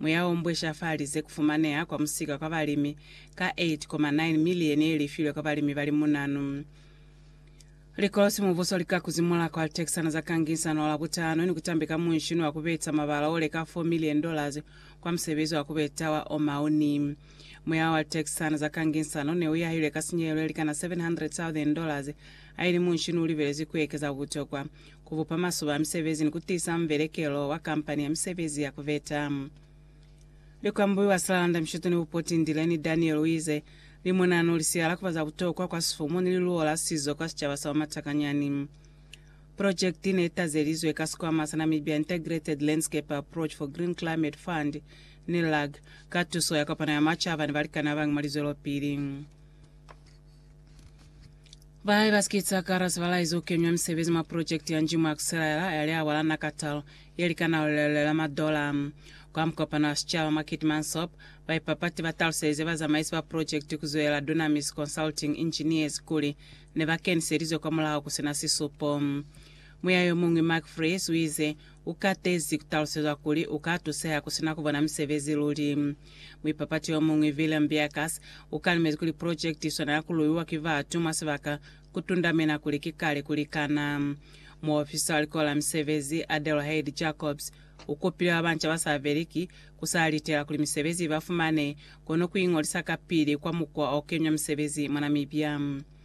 Muyaombweja fa lize kufumaneha kwa musika kwa balimi ka 8.9 milieni yelifilwe kwa balimi bali munanu. Likolo simubuso lika kuzimula kwa litekisana za kangisano la butano ni kutambi ka munshini wa kubeta mabala oleka 4 milieni dollars kwa musebezi wa kubeta wa omauni. Muyao wa litekisana za kangisano neuyahilwe ka sinyehelo yelikana 700,000 dollars, haili munshini ulibelezwi kuekeza butokwa ku bupa masuba a misebezi ni ku tiisa mubelekelo wa kampani ya misebezi ya ku beta. Likwambuyu wa Silalanda Mishutu ni Bupoti Ndileni Daniel u ize, Limo nano li siya la ku ba za butokwa kwa sifumu ni liluwo la sizo kwa sicaba sa Wamatakanyani. Pulojekiti ne tazelizwe ka sikwama sa Namibia Integrated Landscape Approach for Green Climate Fund, NILAG, ka tuso ya kopano ya macaba ni balikani ba bañi mwa lizwelopili. Balai ba sikitsa kara sibalai zo kenywa misebezi mwa projekti ya Njimu Akusilaela ya liawa la Nakatal ye likana lulelele lwa madola. Kwa mukopano wa sicaba mwa Keetmansop, baipapati ba taluselize bazamaisi ba projekti kuzwelela Dunamis Consulting Engineers kuli ne ba keniselizwe kwa mulaho kusina sisupo. Muya yomuñwi Mark Vries uize, Ukatezi kutalusezwa kuli uka tuseha kusina kubona misebezi luli. Muipapati yomuñwi, Willem Beukers, ukalemezi kuli pulojekiti iswana ya kuluiwa ki batu mwa sibaka kutundamena kuli ki kale kulikana. Muofisa wa Likolo la Misebezi, Adelheid Jacobs, ukupile babanca basabeli ki kusa litela kuli misebezi ibafumane kono kuingolisa kapili kwa mukwa okeñwa misebezi mwa Namibia.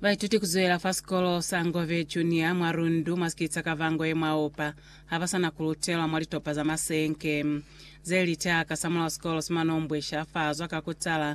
Baituti kuzwela fa sikolo sa Ngove Junior mwa Rundu mwa sikiti sa Kavango ye mwa Oupa habasana kulutelwa mwa litopa za masenke zeli caka samulaho sikolo simanombwisha fazwa kakutala